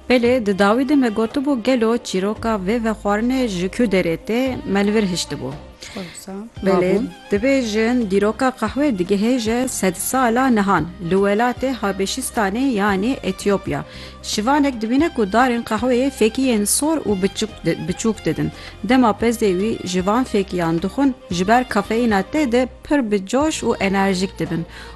Belê di dawî de me gotibû gelo çîroka vê vexwarinê ji ku derê tê me li vir hiştibû. Belê divê jin dîroka qehwê digihêje sed sala nihan li welatê Habeşîstanê yanî Etîopya. Şivanek dibîne ku darên qehweyê fêkiyên sor û biçûk didin. Dema pezdê wî ji van fêkiyan dixwin ji ber kafeyîna tê de pir bi coş û enerjîk dibin.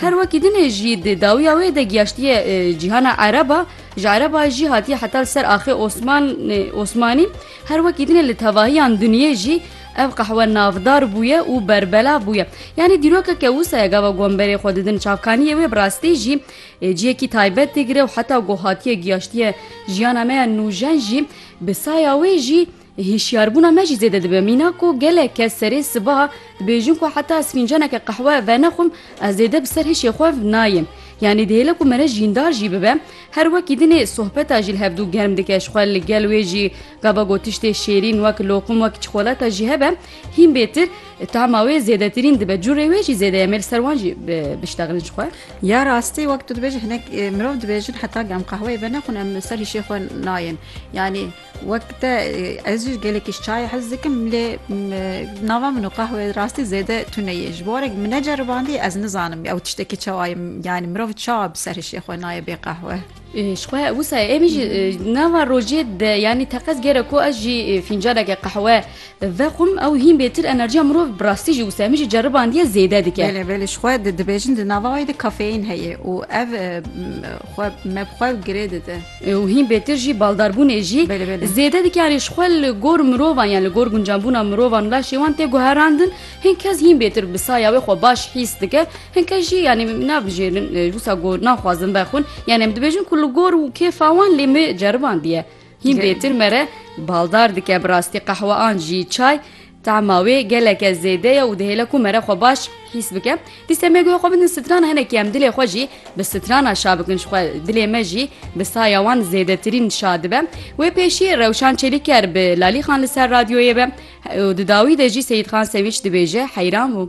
Her wekî din e jî di dawiya wê de giyaştiye cîhana Ereb a, ji Ereb a jî hatiye heta li ser axê Osman Osmanî. Her wekî din e li tevahiyan dinyê jî ev qehwe navdar bûye û berbelav bûye. Yanî dîrokeke wisa ye gava gomberê xwe didin çavkaniyê wê bi rastî jî ciyekî taybet digire û heta ku hatiye giyaştiye jiyana me ya nûjen jî bi saya wê jî Hişyarbûna me jî zêde dibe. Mîna ku gelek kes serê sibaha dibêjin ku heta ez fîncaneke qehwe venexwim ez zêde bi ser hişê xwe nayêm. Yanî dihêle ku mere jîndar jî bibe. Her wekî din ê sohbeta jî li hev dû germ dike. Ji xwe li gel wê jî gava ku tiştê şêrîn wek loqim wek çikolata jî hebe hîn bêtir tahma wê zêdetirîn dibe. Curê wê jî zêde ye mêr ser wan jî biştexilin ji xwe. Ya rastî wek tu dibêjî hinek mirov dibêjin heta em qehweyê venexwin em bi ser hişê xwe nayên. Yanî Wek te ez jî gelekî ji çayê hez dikim lê nava min û qehwê rastî zêde tune ye. Ji barek min neceribandiye ez nizanim ew tiştekî çawa ye yanî mirov çawa bi ser hişê xwe naye bê qehwe. Ji xwe wisa em jî nava rojê de yanî teqez gereko ez jî fîncaneke qehwe vexwim ew hîn bêtir enerjiya mirov bi rastî jî wisa min jî ceribandiye zêde dike. Belê belê ji xwe dibêjin di nava wê de kafeîn heye û ev xwe me bi xwe girê dide. û hîn bêtir jî baldarbûnê jî zêde dike yanî ji xwe li gor mirovan yan li gor guncanbûna mirovan laşê wan tê guherandin hîn kes hîn bêtir bi saya wê xwe baş hîs dike hin kes jî yanî navijêrin wisa gor naxwazin vexwin yan em dibêjin ku li gor û kêfa wan lê me ceribandiye hîn bêtir mere baldar dike bi rastî qehwe an jî çay Tahma wê geleke zêde ye û dihêle ku me re xwe baş hîs bike. Dîse me guhe xwe bidin strana hinekî em dilê xwe jî bi strana şa bikin ji xwe dilê me jî bi saya wan zêdetirîn şa dibe. Wê pêşî Rewşan Çelîker bi Lalî Xan li ser radyoyê be û di dawî de jî Seyîdxan Sewîç dibêje heyran bû.